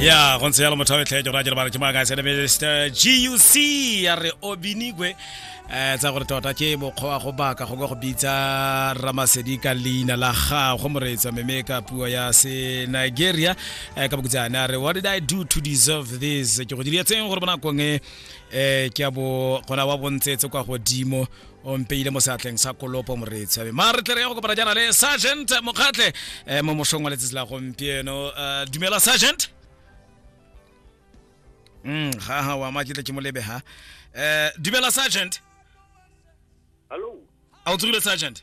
ya go ntse yalo motho wa metlhejo ra jere ba re ke maaka sene mr guc ya re obinigwe um tsa gore tota ke mokgwa wa go baka go ka go bitsa ramasedi ka leina la gago moreetsa meme ka puo ya se nigeria um ka bokutsane a re what did i do to deserve this ke go diretseng gore bonakong e um ke a bo gona wa bontsetse kwa godimo o mpeile mo seatleng sa kolopo moreetshabe ma re tle re ya go kopana jaana le sergeant mokgatlhe eh, mo mosong wa letsatsi la gompieno Eh, dumela sergeant mm ha ha wa ma ke tle ke mo lebe ha Eh, dumela sergeant Hello. a o tsogile sergeant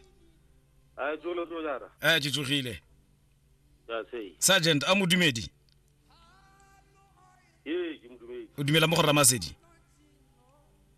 A tsolo tsolo jara. eh ke tsogile Ya sei. sergeant a modumedi Ye ke modumedi. o dumela mo go ramasedi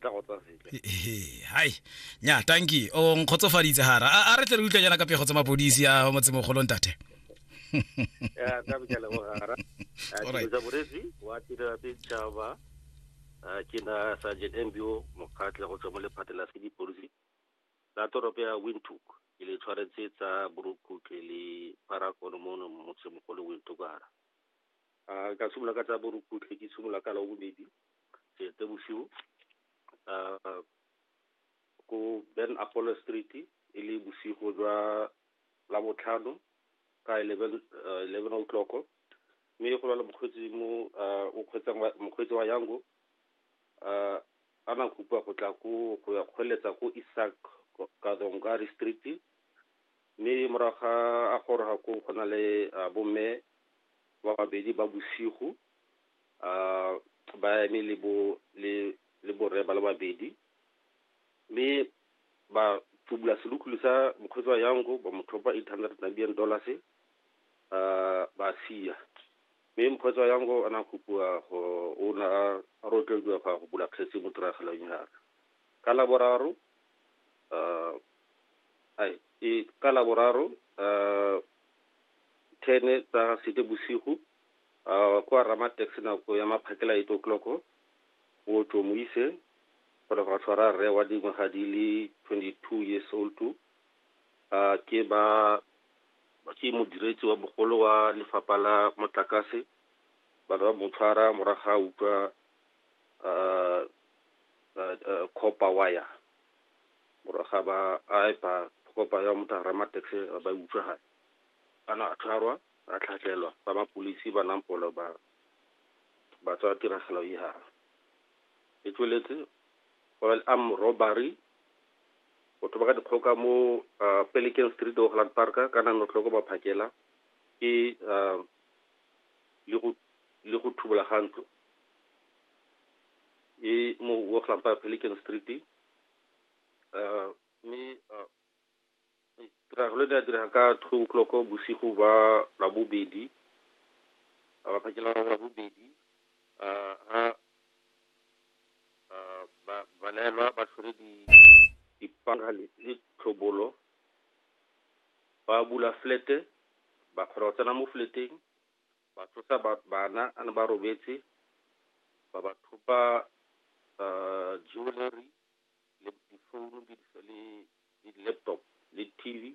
tla go tsaya sentle hai nya tanki o nkgotsofaditse hara a re tle re utlwa jaana ka pego tsa mapodisi a motsemogolo ntate ya ka bja le bogara tsa borezi wa tirela setšhaba ke na sergeant mbio mokgatle go tswa mo lephate la sedipodisi la toropo ya windhoek ke le tshwaretse tsa borokhutle le parakono mono motsemogolo windhoek hara Uh, ka simolola ka tsa borukutlhe ke simolola ka la bobedi sete bosigo uh, ko ben apollo street e le bosigo jwa la botlhano ka 11 uh, 11 o'clock mme go lwala mokgweetsi mo uh, o kgweetsang mokgweetsi wa yango uh, a na kopa go tla ko go ya kgweletsa ko isak kadongari street Mme morago ga a goroga koo go na le uh, bomme ba babedi ba bosigo uh, ba eme le bo le le borre ba le babedi mme ba tubula selukulu sa mokgweetsi wa yango ba mo thopa 800 Namibian dollars uh, ba sia mme mokgweetsi wa yango a na kopiwa go o na a rotlediwa go ya go bula kgetse mo tiragalong yara ka laboraro uh, ka Laboraro ten tsa Seetebosigo kwa Ramatex nako ya maphakela eight o'clock o tlo mo ise gore go tshwara rre wa dingwaga di le 22 years old to ke ba ke modiredi wa bogolo wa lefapha la motlakase ba ba mo tshwara morago ga utlwa copper wire. gore ga ba a epa kopa ya motara ma taxi ba utswa ga ana a tshwarwa a tlhatlhelwa ba ba polisi ba nang polo ba ba tswa tiragalo e ha e tsweletse oil arm robbery batho ba ka dikgoka mo ah, pelican street ogland park ka nang notloko ba phakela ke ah, le go le go thubola ga ntlo e mo ogland park pelican street mme tiragalo e ne ya direga ka two o'clock bosigo ba labobedi phakela labobedi ha balaelwa ba tshwere dipanga le tlhobolo ba bula flete ba kgona go tsena mo fleteng Ba tlosa bana a ne ba robetse, ba ba thopa jewellery, le difounu, le di-laptop, le TV.